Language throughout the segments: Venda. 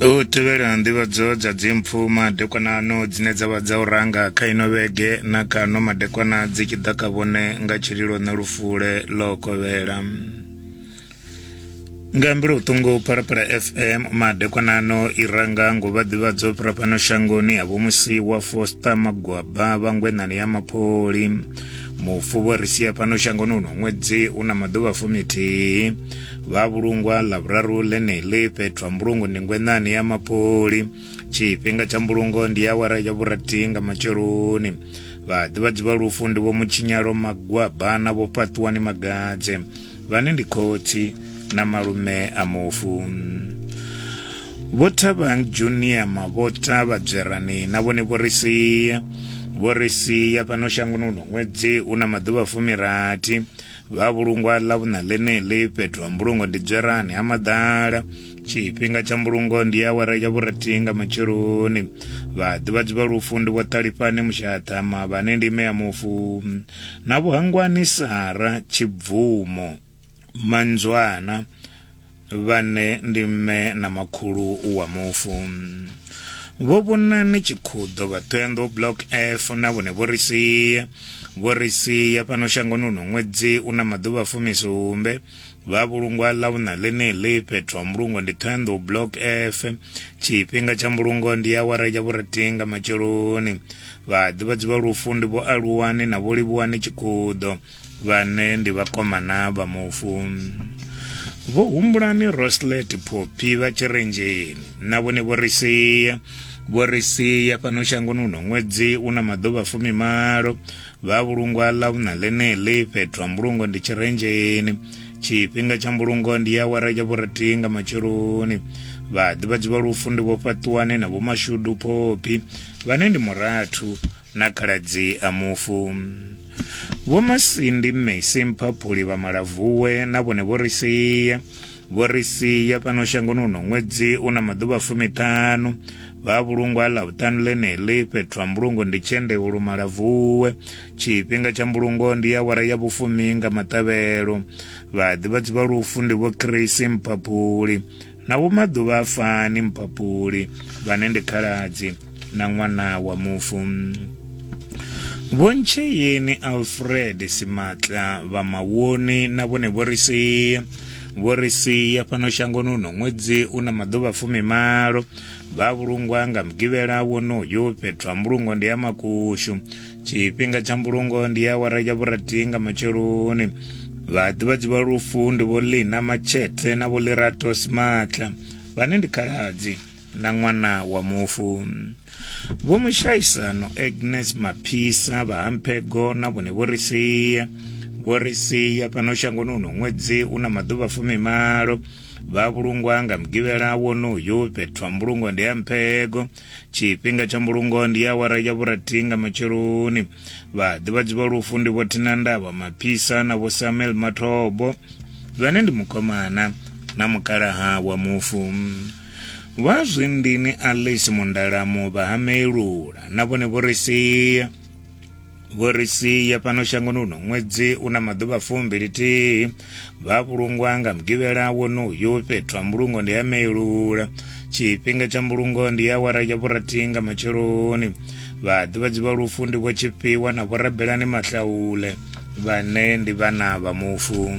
u tevhela nḓivhadzo dza dzimpfu madekwanano dzine dza vha dza u ranga kha ino vhege na kano madekwana dzi tshi ḓa kha vhone nga tshililo na lufule ḽo kovhela nga mbilo vhuṱungu phalaphala fm madekwanano i ranga ngo vha ḓivhadzo fhira fhano shangoni ha vho musi wa fosta magwaba vhangwenani ya mapholi mufu vho ri sia fhano shangoni uno ṅwedzi u na maḓuvha fumithihi Vha vhulungwa ḽa vhuraru ḽeneḽi fhethu ha mbulungo ndi ngwenani ya mapoli tshifhinga tsha mbulungo ndi awara ya vhurathi nga matsheloni vhaḓivhadzi vha lufu ndi vho mutshinyalo magwaba na vho fhaṱuwani magadze vhane ndi khotsi na malume a mufu vho thabang junior mavhota vhadzwerani na vhone vho ri sia vho ri sia fhano shangoni uno ṅwedzi u na maḓuvha fumirathi vha vhulungwa ḽa vhuṋa ḽeneḽi fhethu ha mbulungo ndi dzwerani ha maḓala tshifhinga tsha mbulungo ndi awara ya vhurathi nga matsheloni vhaḓivhadzi vha lufu ndi vho ṱalifhani mushaṱhama vhane ndi ime ya mufu na vhuhangwani sara tshibvumo manzwana vhane ndi mme na makhulu wa mufu vho vhonani tshikhuḓo vha ṱhoyandou block f na vhone vho ri sia vho ri sia fhano shangoni uno ṅwedzi u na maḓuvha fumisumbe vha vhulungwa ḽa vhuṋa ḽeneḽi fhethu ha mbulungo ndi ṱhoyandou block f tshifhinga tsha mbulungo ndi ya awara ya vhurathi nga matsheloni vhaḓivhadzi vha lufu ndi vho aluwani na vho livhuwani tshikhuḓo vhane ndi vhakomana vha mufu vho humbulani roslet phophi vha tshirenzheni na vhone vho ri sia vho ri sia fhano shangoni uno ṅwedzi u na maḓuvha fumimalo vha vhulungwa ḽa vhuna ḽeneḽi fhethu ha mbulungo ndi tshirenzheni tshifhinga tsha mbulungo ndi ya wara ya vhurathi nga matsheloni vhaḓivhadzi vha lufu ndi vho fhaṱuwane na vhomashudu phophi vhane ndi murathu na khaladzi a mufu. Vho Masindi Mmesi Mphaphuli vha Malavuwe na vhone vho ri sia vho ri sia fhano shangoni uno ṅwedzi u na maḓuvha fumiṱhanu vha vhulungwa ḽa vhuṱanu ḽeneḽi fhethu ha mbulungo ndi tshendehulu malavuwe tshifhinga tsha mbulungo ndi ya wara ya vhufumi nga maṱavhelo vhaḓivhadzi vha lufu ndi vho chris mphaphuli na vho maḓuvha a fani mpapuli vhane ndi khaladzi na ṅwana wa mufu vhontsheyeni alfred simatla vha mawoni na vhone vho ri sia vho ri sia fhano shangoni uno ṅwedzi u na maḓuvha fumimalo vha vhulungwa nga mugivhela wonoyo fhethu ha mbulungo ndi ya makushu tshifhinga tsha mbulungo ndi awara ya vhurathi nga matsheloni vhaḓivhadzi vha lufu ndi vho lina matshete na vho lirato simatla vhane ndi khaladzi na ṅwana wa mufu vho mushaisano agnes maphisa vhahamphego na vhone vho ri sia vho ri sia fhano shangoni uno ṅwedzi u na maḓuvha fumimalo vha vhulungwa nga mugivhela wonoyo fhethu ha mbulungo ndi ya mphego Tshifhinga tsha mbulungo ndi awara ya vhurathi nga matsheloni. Vhaḓivhadzi vha lufu ndi Vho Thina Ndaba Maphisa na Vho Samuel Mathobo vhane ndi mukomana na mukalaha wa mufu. Vha zwindini Alice Mundalamu vha ha Melula na vhone vho ri sia. vho ri sia fhano shangoni uno ṅwedzi u na maḓuvha fumbili-thihi vha vhulungwa nga mugivhela wonoyu fhethu ha mbulungo ndi ya meilula tshifhinga tsha mbulungo ndi ya awara ya vhurathi nga matsheloni vhaḓivhadzi vha lufu ndi vho tshifhiwa na vhorabelani mahlaule vhane ndi vhana vha mufu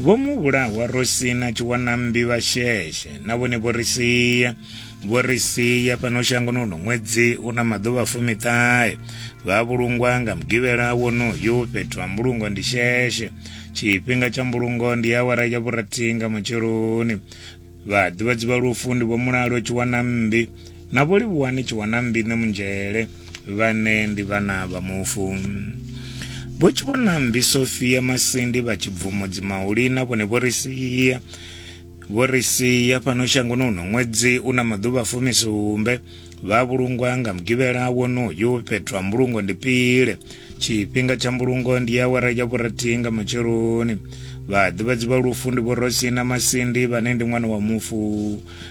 vho mu vhulahwa ro sina tshiwanambi vha sheshe na vhone vho ri sia vho ri sia fhano shangoni uno ṅwedzi u na maḓuvha fumiṱahe vha vhulungwa nga mugivhela wonoyu fhethu ha mbulungo ndi sheshe tshifhinga tsha mbulungo ndi awara ya vhurathi nga matsheloni vhaḓivhadzi vha lufu ndi vho mulalo tshiwana mmbi na vho livhuwani tshiwana mmbi nṋe munzhele vhane ndi vhana vha mufu vho tshiwana mmbi sofia masindi vha tshibvumo dzimahuli na vhone vho ri sia Vho ri sia fhano shangoni uno ṅwedzi u na maḓuvha fumisumbe vha vhulungwa nga mugivhela wonoyu fhethu ha mbulungo ndi pile tshifhinga tsha mbulungo ndi awara ya vhurathihi nga matsheloni vhaḓivhadzi vha lufu ndi vho rosina masindi vhane ndi ṅwana wa mufu